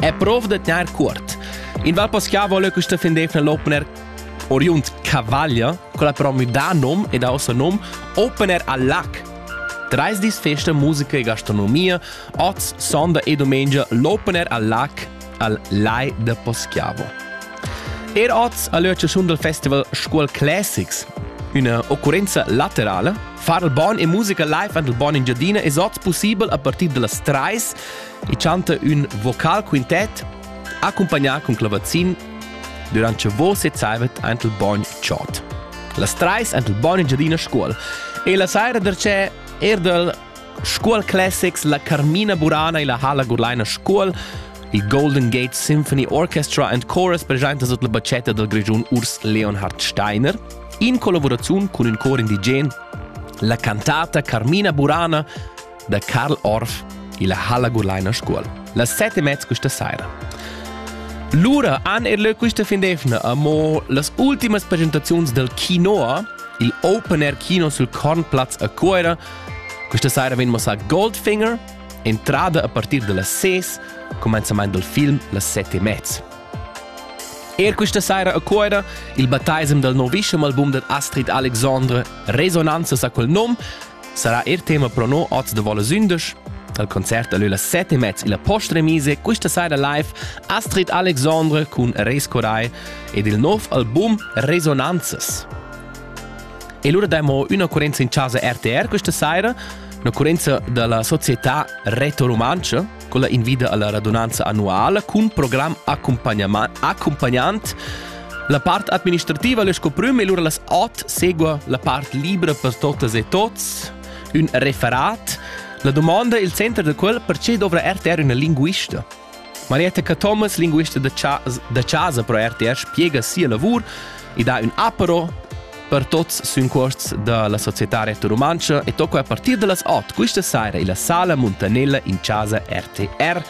e prov da tener cuort. In val paschià vole questa fendefna l'opener oriunt Cavaglia, con la però da nom e da ossa nom Opener al lac. Dreis dis festa musica e gastronomia, oz sonda e domenica l'opener al lac al Lai de Poschiavo. Er oz a l'Öcciasun del Festival Scuol Classics, una occurenza laterale, far il bon e musica live an il bon Engiadina es oz possibel a partir de las 3 e chanta ün vocal quintet, accumpagnà cun clavazin durant che vo sezzavet ant il bogn chod. Las trais ant il bogn in giadina scuol. E la saira dercè erdel Scuol Classics la Carmina Burana e la Hala Gurlaina Scuol, il Golden Gate Symphony Orchestra and Chorus presenta sut la bacetta del Grigiun Urs Leonhard Steiner, in collaborazione con il cor indigen, la cantata Carmina Burana da Karl Orff illa halla Gurlaina Scuol. Las sette e mezza questa sera. Lura han er lö quista fin d'efna amo las ultimas presentaziuns del Kinoa, il Open Air Kino sul Kornplatz a Cuera. Questa sera vegn mossà Goldfinger, entrada a partir de las 6, comenzament del film las 7 e mezza. Er questa sera a Cuera il battaisem del novischem album del Astrid Alexandre Resonanza sa quel nom Sarà er tema pro no oz da vola sündisch. Dal concert da lö las 7 e mezz illa Postremise quista saira live Astrid Alexandre cun Res Corai ed il nov album Resonanzas. E lura damo un'occurenza in casa RTR questa saira, un'occurenza dalla società Reto Rumantsche, quella invida alla radunanza annuala cun program accompagnant la part administrativa le scoprüm e lura las ot segua la part libra per totas e tots un referat la domanda il center del qual perché dovra RTR una linguista Marietta Cathomas, linguista da, cha da casa pro RTR, spiega sia lavur e dà un apero per tots sün cuosts da la Società Rete Rumantscha e tocco a partir da las 8 quista saira illa sala Muntanella in casa RTR.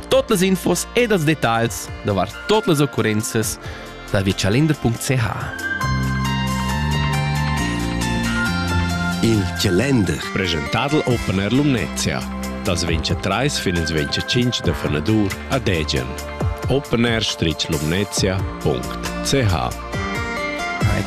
Tot las infos ed els detagls davart tot las occurrenzas da viacialender.ch. Il Calender, presentado Opener Lumnezia, das 23 fin ins 25 de Fenadur a Degen. opener-lumnezia.ch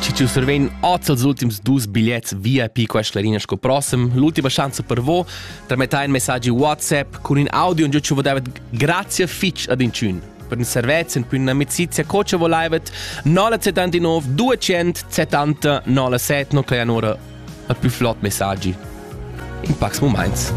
Ci ci survegn oz els ultims dus bigliets VIP qua Schlarina sco prossem. L'ultima schanza per vo, tramettà in messaggi WhatsApp cun in audio in giucio davet grazie fitch ad incun. Per in servez in pun amicizia co ce volaivet 979 270 97 no clean ora a più flott messaggi. In pax moments.